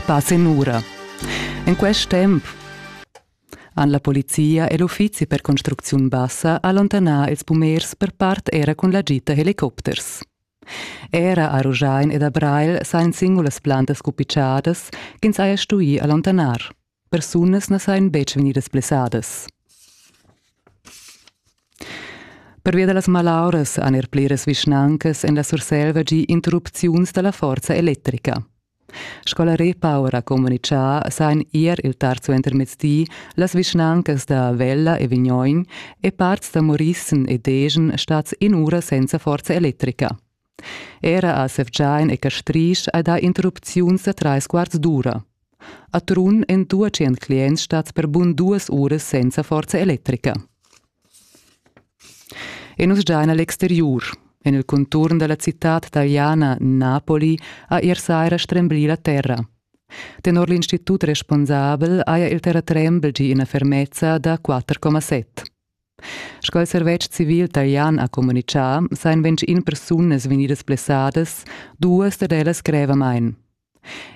Pass en ura. En quest temp han la polizia e l'uffizi per construcziun bassa allontanà ils pumers per part era cun la gita helicopters. Era a Ruschein ed a Breil sajan singulas plantas cupitschadas ch'ins haja stuì allontanar. Persunas na sajan betg vegnidas blessadas. Pervia da las malauras han er pliras vischnancas en la Surselva gì interrupziuns da la forza electrica. Scola Repower ha communitgà sajan ier il tard suentermezdi las vischnancas da Vella e Vignoin e parts da Morissen e Degen stads in'ura senza forza electrica. Era a Sevgiain e Castrisch hai dà interrupziuns da trais quarts d'ura. A Trun èn duatschient clients stads per bun duas uras senza forza electrica. E nus giain a l'exteriur. En il conturn da la citad taliana Napoli ha ier saira stremblì la terra. Tenor l'institut responsabel haja il terratrembel gì ina fermezza da 4,7. Sco il servetsch civil talian ha communitgà, sajan ventg in persunas vegnidas blessadas, duas dad ellas grevamain.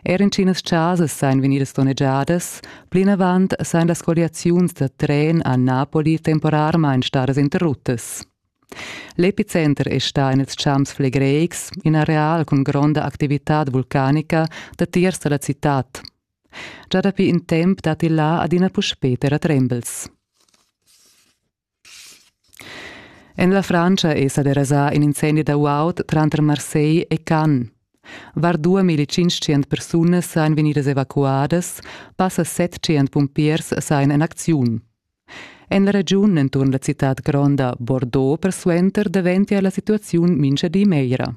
Er intginas chasas sajan vegnidas donnegiadas, plinavant sajan las colliaziuns da tren a Napoli temporarmain stadas interruttas. L'epicenter è stà en ils champs flegreics, in areal cun gronda activitad vulcanica datiers da la citad. Già dapi in temp dat il là adina puspè terratrembels. En la Frantscha è sa derasà in incendi da guaud tranter Marseille e Cannes. Var 2500 persunas sajan vegnidas evacuadas, passa 700 pumpiers sajan en acziun. En la regiun enturn la citad gronda Bordeaux persuenter daventia la situaziun mincha di meglra.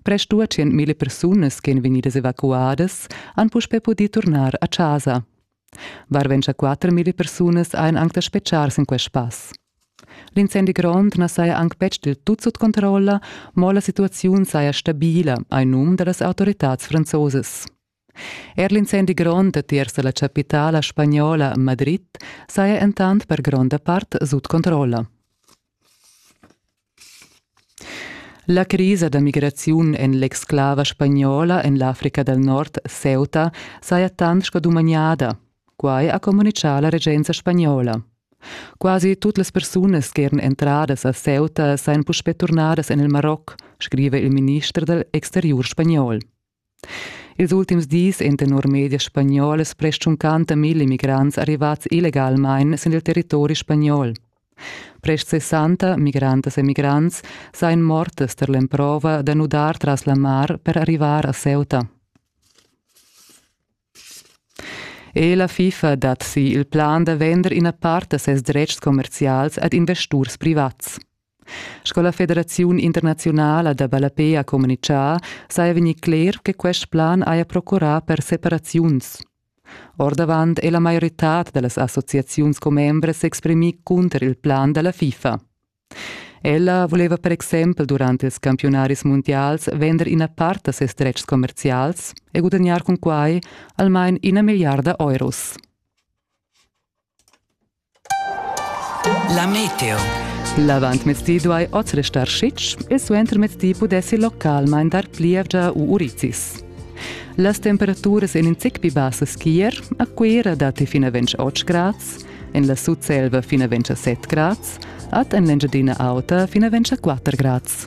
Prest dua tschient mila persunas ch'ein vegnidas evacuadas han puspei pudì turnar a chasa. Varventscha quatter mila persunas ein anc da spetgar sin quest pass. L'incendi grond na saja anc betg del tut sut controlla, mo la situaziun saja stabila, hai num da las autoritads franzosas. Er l'incendi grond tiers la chapitala spagnola Madrid saja entant per gronda part sut controlla. La crisa da migraziun en l'exclava spagnola en l'Africa dal Nord, Ceuta, saja tant sco dumagnada. Quai ha communitgà la regenza spagnola. Quasi tutte le persone che erano entrate a Ceuta saranno puspé tornadas en il Marocco, scrive il ministro dell'Exterior spagnol. Ils ultims dis èn tenor medias spagnolas prest tschuncanta milla immigrants arrivads illegalmain sin il territori spagnol. Prest sessanta migrantas e migrants sajan mortas tar l'emprova da nudar tras la mar per arrivar a Ceuta. E la FIFA dat si il plan da vender ina part da ses dretgs commerzials ad investurs privats. Sco la Federaziun internaziunala da ballape ha communitgà, saja vegnì cler che quest plan haja procurà per separaziuns. Ordavant è la maioritad da las associaziuns commembres s'exprimì cunter il plan da la FIFA. Ella voleva per exempel durant ils campiunaris mundials vender ina part da ses dretgs commerzials e gudagnar cun quai almain ina milliarda euros. La meteo. L'avantmezdi duai oz restar schitg e suentermezdi pudessi localmain dar plievgia u urizis. Las temperaturas en in zic pli bassas ch'ier, a Cuira datti fin a 28 grads, en la Sutselva fin a 27 grads, ad en l'Engiadina auta fin a 24 grads.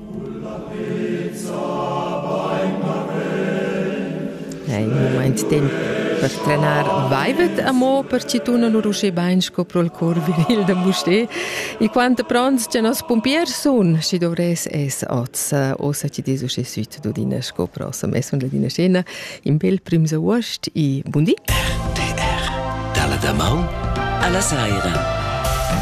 Ei mumaint temp per trenar baivet amo per chi tuna lur uschè bain sco pro'l cor viril da Mustér. E quant pronts cha nos pumpiers sun, schi dovress es oz, ossa chi des uschè süt d'odina sco prossem. Es von ladina scena in bel prims august e bun di. RTR dalla damaun alla saira.